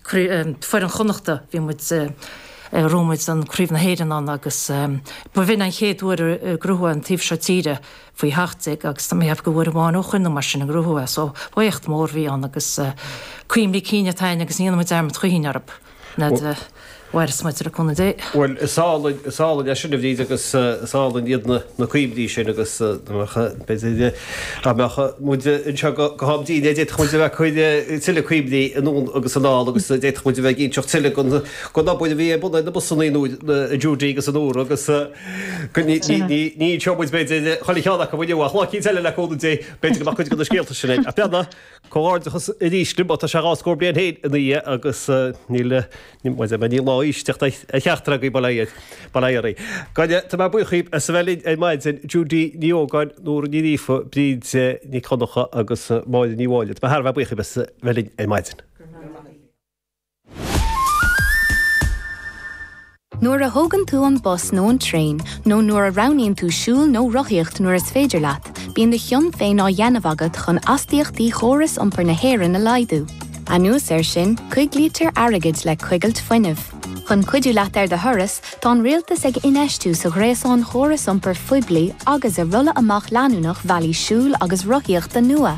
foireann Chonnachta, bhí muid, rug muid an Chraobh na hÉireann ann agus ba bhin an chéad uair ar ghnóthaigh an taobh seo tíre faoi sheacht déag agus tá mé a cheapadh gur uair amháin ó shoin nó mar sin a gnóthaíodh é so ba éacht mór a bhí ann agus cuimhní cinn atá ann agus ní dhéanfaidh muid dearmad choíchin air an fhad a mhaireas muid le cúnamh Dé. Bhuel, is álainn, is álainn é sin, a Bhríd, agus is álainn iad na cuimhní sin agus, b'fhéidir, Dá mbeadh muid anseo go ham dínnéir, d'fhéadfadh muid a bheith ag cur tuilleadh cuimhní anonn agus anall agus d'fhéadfadh muid a bheith ag inseacht tuilleadh den obair a bhí ar bun ag na busanna ag Judy agus ag Nóra agus ní inseoidh muid, b'fhéidir, chuile cheann acu inniu ach lá eicínt eile le cúnamh Dé, b'fhéidir go mbeadh cuid de na scéalta sin ag. Comhghairdeachas arís libh, tá sé dhá scór bliain anois ina dhiaidh agus níl aon lá aoise ag teacht ar cheachtar agaibh, bail ó Dhia oraibh. Ach tá mé buíoch dhaoibh as a bheith linn ar maidin, Judy Ní Ógáin, Nóra Ní Ghríofa, Bríd Nic Dhonnacha agus Máire Ní Mháille, tá mé thar a bheith buíoch dhaoibh as a bheith linn ar maidin. Nuair a thógann tú an bus nó an traein, nó nuair a roghnaíonn tú siúl nó rothaíocht nuair is féidir leat, bíonn do chion féin á dhéanamh agat chun astaíochtaí chóras iompair na hÉireann a laghdú. Anuas air sin, coiglítear airgead le coigilt fuinnimh. Chun cuidiú leat ar do thuras, tá an rialtas ag infheistiú sa ghréasán chóras iompair phoiblí agus i rolladh amach leanúnach bhealaí siúil agus rothaíochta nua.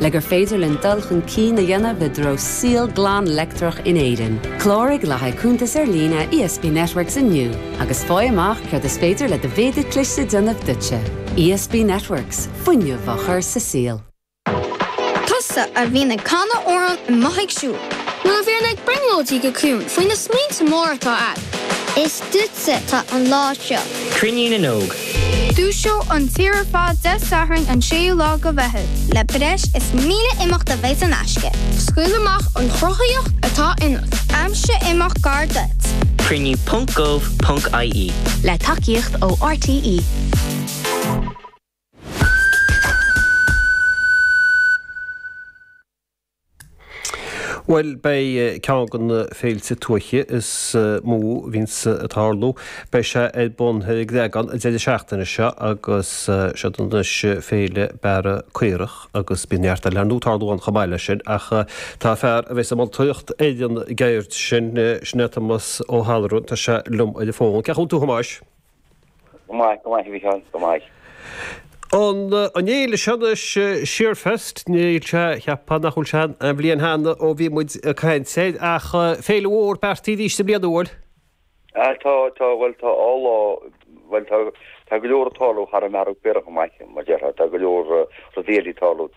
Le gur féidir linn dul chun cinn a dhéanamh i dtreo saol glan leictreach in Éirinn, cláraigh le haghaidh cuntas ar líne ESB Networks inniu agus faigh amach céard is féidir le do mhéadar cliste déanamh duitse. ESB Networks, fuinneamh á chur sa saol. Tusa a bhíonn ag canadh amhrán i mbun a bheith ag siúl. Nó a bhíonn ag brionglóidí go ciúin faoi na smaointe móra atá agat. Is Duitse atá an lá seo. Cruinniú na nÓg. Dúiseoidh an tír ar fad Dé Sathairn an 6ú lá de Mheitheamh. Le breis is 1,000 imeacht a bheidh saor in aisce. Scaoil amach an chruthaíocht atá ionat. Aimsigh imeacht gar duit. Cruinniú ponc gov ponc ie. Le tacaíocht ó RTÉ. Bhuel, beidh ceann de na féilte tuaithe is mó a bhíonns ag tarlú, beidh sé ar bun ar an gCreagán an deireadh seachtaine seo agus siod anois Féile Bearradh Caorach agus bíonn neart eile ar ndóigh ag tarlú ann chomh maith leis sin ach tá fear a bheidh ag moltóireacht ar an gceird sin, sin é Thomas Ó hAlluran, tá sé liom ar an bhfón. Cén chaoi a bhfuil tú a Thomáis? Go maith, go maith a Mhicheáil, go maith. An fhéile seo anois, Shearfest, níl sé, cheapfá nach bhfuil sé aon bhliain cheana ó bhí muid ag caint air, ach féile mhór beartaithe arís i mbliana, an bhfuil? Tá, tá, bhuel tá dhá lá, bhuel tá, tá go leor ag tarlú thar an mbearradh caorach, a Mhichael, mar déarfá, tá go leor rudaí eile ag tarlú.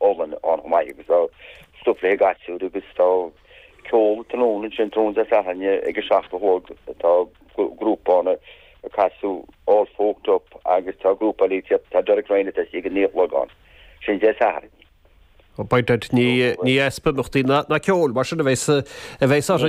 olann ann chomh maith agus tá stuif le haghaidh gasúir agus tá ceol tráthnóna ansin, tráthnóna Dé Sathairn ag a seacht a chlog tá grúpa ann ag casadh All Folked Up agus tá grúpa eile ag tabh, tá Derek Ryan atá istigh ag a naoi a chlog ann, sin Dé Sathairn. Ó, beidh, ní, ní easpa imeachtaí ná ceoil mar sin a bheas, a bheas orthu.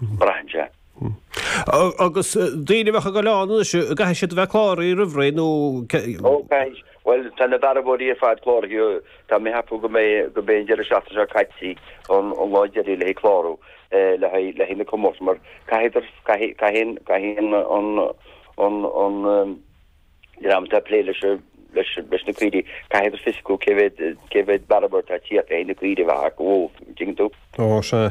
braitheann sé. Agus daoine a bheadh ag goil ann anois, caithfidh siad a bheith cláraithe roimh ré nó cad? Ó caithfidh, bhuel tá na bearbóirí ar fad cláraithe, tá mé ag ceapadh go mba é, go mba é an deireadh seachtaine seo caite an lá deiridh le haghaidh clárú le haghaidh, le haghaidh na comórtais mar caithfidar, caithfidh, caithfidh, caithfidh an, an, an, an dream atá ag plé leis an, leis, leis na caoirigh, caithfidar fios acu cé mhéad, cé mhéad bearbóir atá ag tíocht le haghaidh na caoirigh a bheith acu, an dtuigeann tú? Ó, sea.